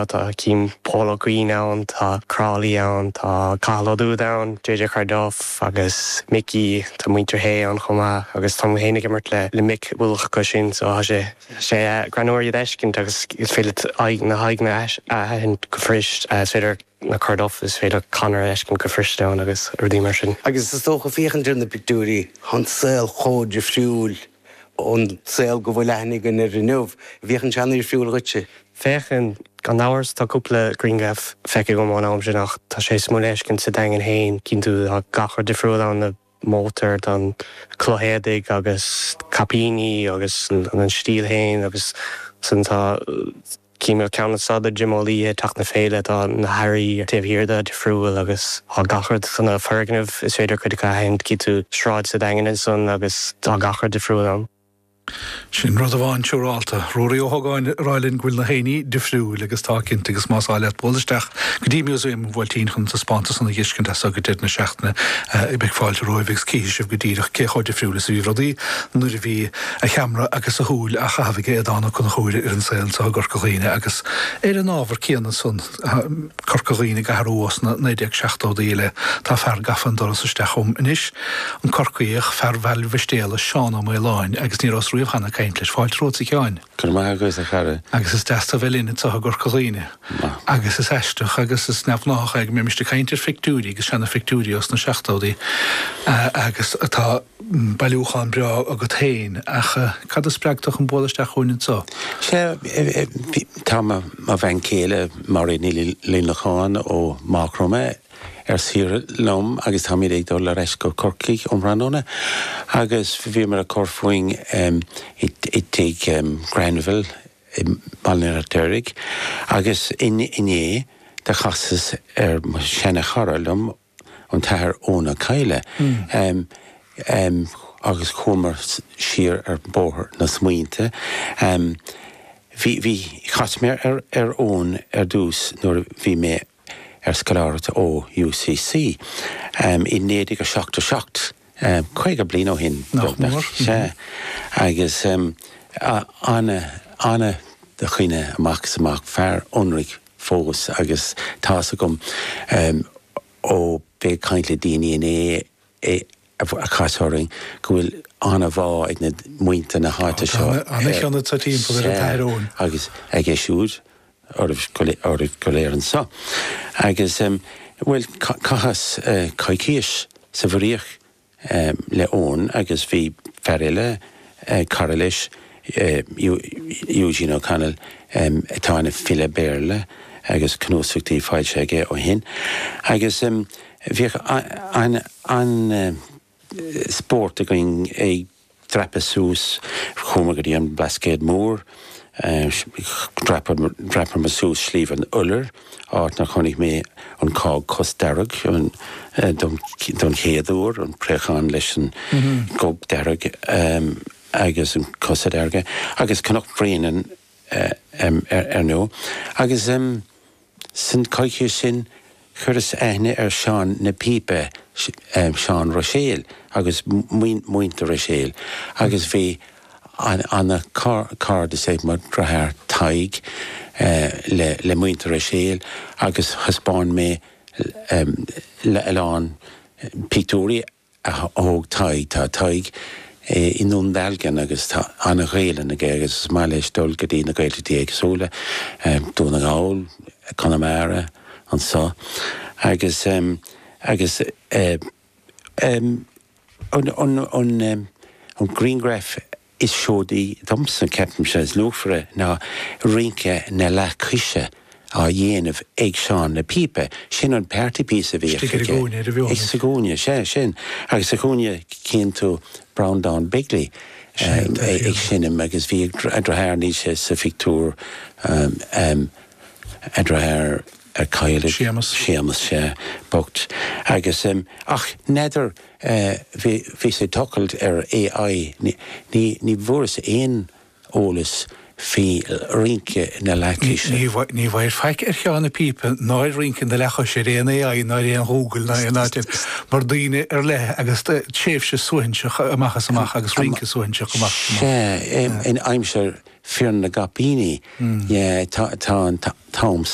Tá Cian Pól Ó Cuinn ann, tá Crowley ann, tá Cathal Ó Dubhda ann, JJ Corduff agus Mickey, tá muintir Shé ann chomh maith agus tá mé féin ag imirt le mic uilig acu sin so tá sé sé greannmhar iad a fheiscint agus is féidir leat na haghaidheanna a aithint go fuirist. Is féidir na Corduff, is féidir Conor a fheiscint go fuirist ann agus rudaí mar sin. Agus is dócha féachaint ar na pictiúirí, tá an saol chomh difriúil. ón saol go bhfuil aithne againn air inniu. Bhféachann sé ana dhifriúil dhuitse? Féachann, gan amhras, tá cúpla grianghraf feicthe agam ón am sin ach tá sé suimiúil a fheiscint sa Daingean féin, cíonn tú tá gach rud difriúil ann, na mótair, tá an chulaith éadaigh agus caipíní agus an stíl féin agus san tá, Címil ceann is fada Jim Ó Laoidhe teacht na féile tá na hairí taobh thiar de difriúil agus tá gach rud chun na foirgneamh is féidir cuid acu a aithint cífidh tú sráid sa Daingean ansan agus tá gach rud difriúil ann. Sin rud amháin siúrálta. Ruairí Ó hÓgáin ag rá linn go bhfuil na héinní difriúil agus tá cinnte agus más áil leat bualadh isteach go dtí Museum an Bhuailtín chun an taispeántas san a fheiscint as so go deireadh na seachtaine beidh fáilte romhaibh agus cífidh sibh go díreach cé chomh difriúil is a bhí rudaí nuair a bhí a cheamra agus a shúil á chaitheamh aige Donncha Ó Conchúir ar an saol anseo i gCorca Dhuibhne agus ar an ábhar céanna san, Corca Dhuibhne go háirithe ó sna 1970idí i leith, tá fear gafa an doras isteach chugam anois, an Corcaíoch, fear Bhaile Mhistéala, Seán Ó Maoláin, agus ní rabhas riamh cheana ag caint leis. Fáilte romhat, a Sheáin. Go raibh maith agat, a chara. Agus is deas tu bheith linn anseo i gCorca Dhuibhne. Agus is aisteach agus is neamhghnáthach é go mbeimis ag caint ar phictiúirí agus seana phictiúirí ó sna seachtódaí agus atá, Bailiúchán breá agat féin, ach cad a spreag tu chun bualadh isteach chugainn anseo? Sea, tá mo bhean céile Máiréad Ní Luineacháin ó Mhaigh Chromtha ar saoire liom agus táimid ag dul ar ais go Corcaigh um thráthnóna agus bhíomar ag cur fúinn i dTigh Granville i mBaile an Fheirtéaraigh agus inné do chasas ar sheana chara liom ó an tAthair Eoghan Ó Cadhla agus chuamar siar ar bhóthar na smaointe. Chas mé ar Eoghan ar dtús nuair a bhí mé ar scoláireacht ó UCC i 1977, 50 bliain ó shin beagnach, sea. Agus ana dhuine amach is amach, fear ionraic, fós agus tá's agam ó bheith ag caint le daoine inné a chas orainn go bhfuil an-bhá ag na muintir na háite seo air agus aige siúd oraibh go léir anso agus bhuel caitheas coicís sa Mhuiríoch le Eoin agus bhí fear eile, cara leis, Eugene O'Connell, atá ina file Béarla agus cnuasachtaí foilsithe aige ó shin. Agus bhíodh an-spórt againn ag. dreapadh suas, chuamar go dtí an Blascaod Mór, dhreapamar suas Sliabh an Iolair, áit ina chonaic mé an cág cosdearg don chéad uair, an préachán leis an gob dearg agus an cosa dearga, agus Cnoc Bréanainn ar ndóigh. Agus. San coicthíos sin chuireas aithne ar Seán na Pípe, Seán Ruiséal, agus Muintir Ruiséil agus bhí ana cairdeas ag mo dheartháir Tadhg le Muintir Ruiséil agus thaispeáin mé a lán pictiúirí a thóg Tadhg. Tá Tadhg i nDún Dealgan agus tá an-Ghaelainn aige agus is maith leis dul go dtí na Gaeltachtaí éagsúla, Dún na nGall, Conamara, anso agus agus an grianghraf Is seoid í dhomsa, ceapaimse, is luachmhaire ná rince na leathchoise á dhéanamh ag Seán na Píopa. Sin an party piece a bhíodh Istigh ar a aige. gcúinne ar a bheola. Sa gcúinne, sea, sin. Agus sa chúinne, tchíonn tú Breanndán Begley Sin é ag féin. seinm agus bhí a dheartháir, níl sé sa phictiúr, a dheartháir a cailleadh, Séamus. Séamus, sea, bocht. Agus, ach n'fheadar Eh, bhíos ag tochailt ar AI, ní, ní bhfuaireas aon eolas faoi rince na leathchoise. Ní bhfuair faic ar Sheán na Píopa ná ar rince na leathchoise ar aon AI ná ar aon Ghoogle ná aon áit eile mar daoine ar leith agus tréimhse suaithinseach amach is amach agus rince suaithinseach amach is amach. Sea, in aimsir Fir na gCaipíní tá an t-am.